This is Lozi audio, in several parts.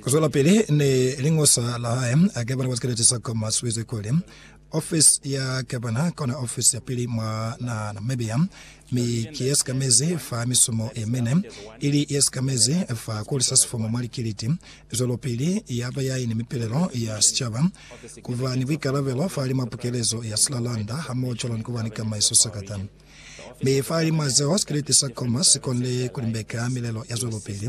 Kuzwelapili ni liñosa la hae, Agabana wa sikeleti sa Goma swize kuli, Ofisi ya Gabana kona ofisi ya pili mwa naha ya Namibia, mi ki ye sikamezi fa misumo ye mine, ili ye sikamezi fa kuhulisa sifumu mwa likiliti, zwelopili yaba ya ini mipilelo ya sicaba, kuba ni buikalabelo fahalimwa pukelezo ya silalanda hamoho cwalo ni kuba ni kamaiso sakata. Mi fa lilimo zeo sikriti sa Comer si konile ku limbeka milelo ya zwelopili,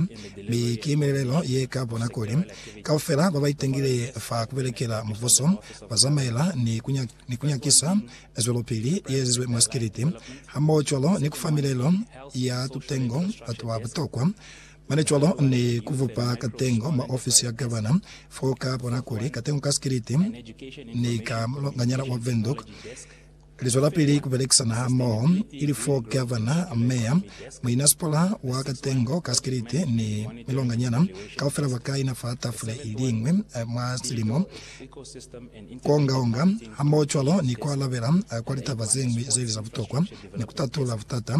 mi ki milelelo ye ka bona kuli kaufela ba ba itangile fa ku belekela mubuso ba zamaela ni ku, ni ku nyakisa zwelopili ye ezizwe mwa sikriti, hamohocwalo ni ku fa milelo ya tutengo batu ba butokwa, mane cwalo ni ku bupa katengo mwa ofisi ya gavana fo ka bona kuli katengo ka sikriti ni ka mulonganyana wa Windhoek. Li zwelapili ku belekisana hamoho, ili fo gavana, meya, muinasipala wa katengo, kasikiliti, ni milonganyana kaufela ba kaina fa tafule iliñwi mwa silimo, ku onga-onga hamoho cwalo ni ku alabela kwa litaba zeñwi zeili za butokwa ni ku tatula butata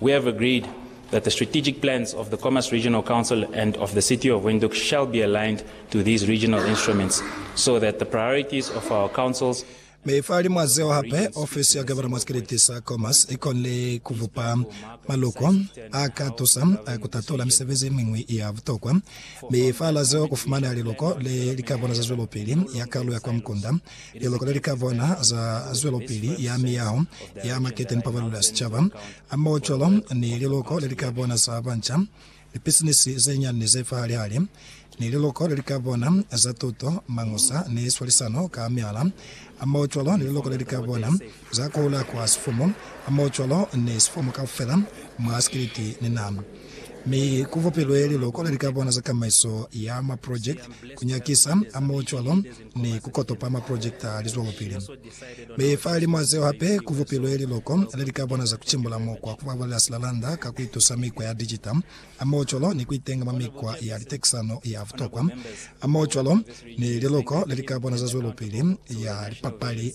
We have agreed that the strategic plans of the Khomas Regional Council and of the City of Windhoek shall be aligned to these regional instruments so that the priorities of our councils Mi fahalimwa zeo hape, ofisi ya Gavana mwa sikiliti sa Khomas i konile ku bupa maloko a ka tusa ku tatula misebezi ye miñwi ya butokwa. Mi fahala zeo, ku fumaneha liloko le li ka bona za zwelopili ya kalu ya kwa mukunda, Liloko le li ka bona za zwelopili ya miyaho ya makete ni pabalelo ya sicaba, hamohocwalo ni liloko le li ka bona za banca, lipisinisi ze nyani ni ze fahali-hali, ni liloko le li ka bona za tuto, mañusa, ni swalisano ka mihala, hamohocwalo ni liloko le li ka bona za kuhula kwa sifumu, hamohocwalo ni sifumu kaufela mwa sikiliti ni naha. Mi ku bupilwe liloko le li ka bona za kamaiso ya maprojekiti, ku nyakisa, hamohocwalo ni ku kotopa maprojekita a lizwelopili. Mi fa limo a zeo hape ku bupilwe liloko le li ka bona za ku cimbula mukwa ku babalela silalanda ka ku itusa mikwa ya dijita hamoho cwalo ni ku itenga mwa mikwa ya litekisano ya butokwa hamoho cwalo ni liloko le li ka bona za zwelopili ya lipapali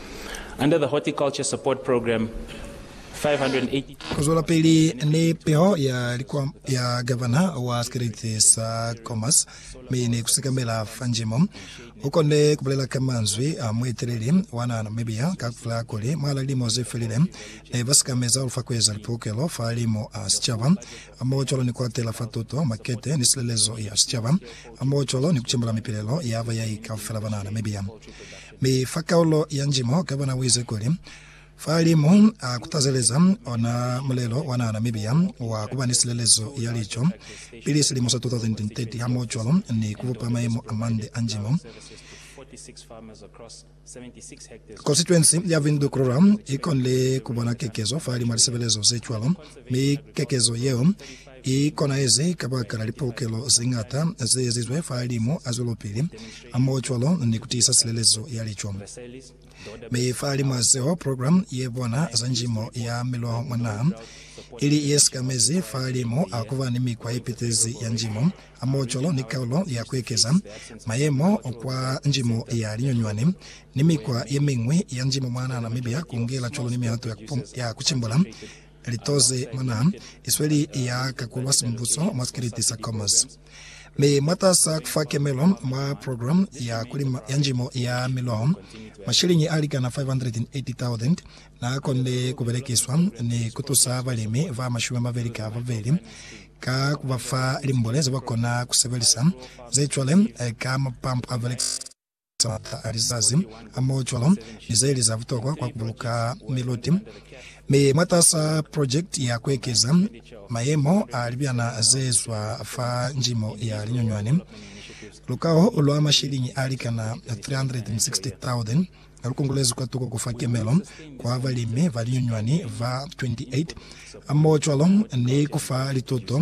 Under the Horticulture Support Program, 580. Kuzwelapili ni piho ya likwambo ya Gavana wa Sikriti sa Comas mi ni kusikamela fa njimo, ukonde kubulela ka manzwi a mueteleli wa naha Namibia ka kufela kuli mwahala lilimo zefelile ne basikameza ulufa kueza lipukelo fa limu a sicaba, hamoho cwalo ni kuatela fa tuto, makete, ni silelezo ya sicaba, hamoho cwalo ni kucembela mipilelo ya bayai kaufela ba naha Namibia. Mi fa kaulo ya njimo ka bona buize kuli, Fa li mu a kutazeleza ona mulelo wa naha Namibia wa kuba ni silelezo ya lico pili silimo sa 2030 hamohocwalo ni kubupa mayemo amande a njimo, Konsituensi ya Windhoek Rural ikonile kubona kekezo falimwa lisebelezo zecwalo, mi kekezo yeo I konahezi kabakala lipokelo zeñata zeezizwe fahalimu a zwelopili hamohocwalo ni kutiisa silelezo ya lico. Mi fahalimu a zeo, program ye bona za njimo ya miloho mwa naha ili yesikamezi fahalimu a kuba ni mikwa yepitezi ya njimo hamohocwalo ni kaulo ya kuekeza mayemo kwa njimo ya linyonywani ni mikwa yemiñwi ya njimo mwa naha Namibia, kungela cwalo ni mihato ya kucimbula Litoze mwa naha i sweli ya kakulwa simubuso mwa sikiliti sa Comus, mi mwataasa kufa kemelo mwa program ya kulima ya njimo ya miloho, mashiliñi alikana 580,000 naakonde kubelekiswa ni kutusa balimi ba mashumi amabeli ka babeli ka kubafa limbule zebakona kusebelisa, ze cwale ka mapampu abelekisa. za matla a lizazi a mo cwalo ni ze li za butokwa kwa ku buluka miluti mi mwatas'a projekiti ya ku ekeza mayemo a libyana ze zwa fa njimo ya linyunywani. Lukaho lwa mashiliñi a likana 360,000 lu kongolezwi kwa tuko ku fa kemelo kwa balimi ba linyunywani ba 28 ha mo cwalo ni ku fa lituto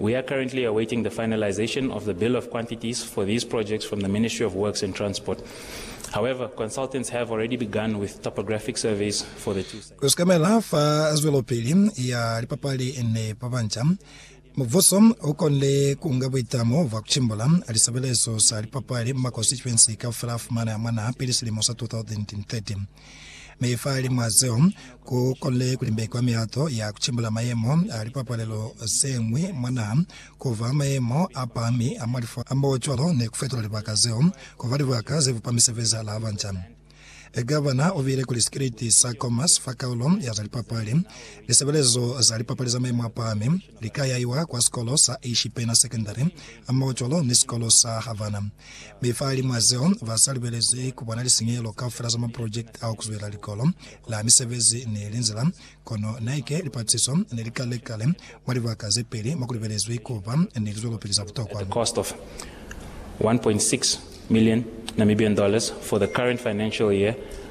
We are currently awaiting the finalization of the bill of quantities for these projects from the Ministry of Works and Transport. However, consultants have already begun with topographic surveys for the two sites. Ku sekamela fa zwelopili ya lipapali ni ba banca, mubuso u konile ku nga buitamo bwa ku cimbula lisebelezo za lipapali mwa konstituensi kaufela a fumana mwa naha pili silimo sa 2030. Mi fa limwa zeo, ku konile ku limbekwa milato ya ku cimbula mayemo a lipapalelo ze ñwi mwa naha, ku fa mayemo a pahami a mwa lifo a mbo cwalo, ni ku fetola libaka zeo ku ba libaka ze bupa misebezi ya laha banca. Gavana u bile kuli sikiliti sa Commerce fa kaulo ya za lipapali, lisebelezo za lipapali za mayemo a pahami, Li ka yaiwa kwa sikolo sa Ishipena Secondary hamohocwalo ni sikolo sa Havana. Mi fahalimw'a zeo, ba sa lubelezi ku bona lisinyehelo kaufela za maprojekiti a ku zwela likolo la misebezi ni linzila. Kono naike lipatisiso ne li kale kale mwa libaka ze peli mo ku lubelezwi ku ba ni lizwelopili za butokwa. a cost of K1.6 million for the current financial year